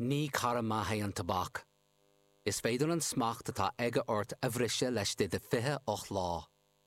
Ní cara maith é an tobac. Is féidir an smacht atá aige ort a bhriseadh laistigh de 28 lá.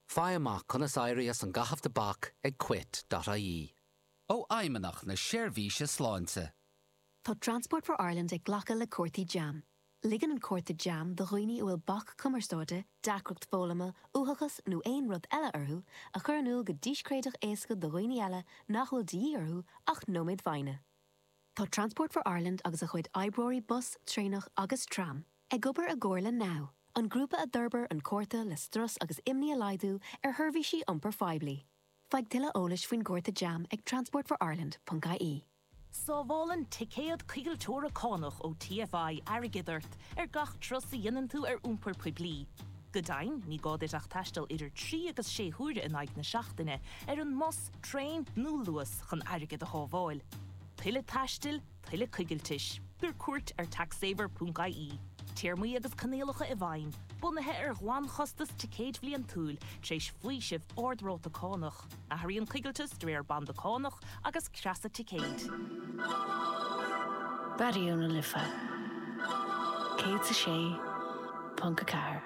Faigh amach conas éirí as an gcaitheamh tobac ag quit.ie. Ó Fheidhmeannacht na Seirbhíse Sláinte. Tá Transport for Ireland ag glacadh le cártaí jam. Ligeann an cárta jam do dhaoine a bhfuil bac cumarsáide, deacracht foghlama, uathachas nó aon rud eile orthu a chur in iúl go díscréideach éasca do dhaoine eile nach bhfuil de dhíth orthu ach nóiméad foighne. Tá Transport for Ireland agus a chuid oibreoirí bus, traenach agus tram ag obair i gcomhar le NOW, an grúpa a d'fhorbair an cárta le strus agus imní a laghdú ar sheirbhísí iompair phoiblí. Faigh tuilleadh eolais faoin gcárta jam ag transportforireland.ie. Sábhálann ticéad coigilteora cánach ó TFI airgead ort ar gach turas a dhéanann tú ar iompar poiblí. Go deimhin, ní gá duit ach taisteal idir trí agus sé huaire in aghaidh na seachtaine ar an mbus, Traein nó Luas chun airgead a shábháil. Tuilleadh taistil, tuilleadh coigiltis. Tabhair cuairt ar taxsaver.ie. Téarmaí agus coinníollacha i bhfeidhm, bunaithe ar ghlanchostas ticéid bhliantúil, tar éis faoiseamh ard-ráta cánach. Athraíonn coigilteas de réir banda cánach agus creasa ticéid. Raidió na Life 106.4.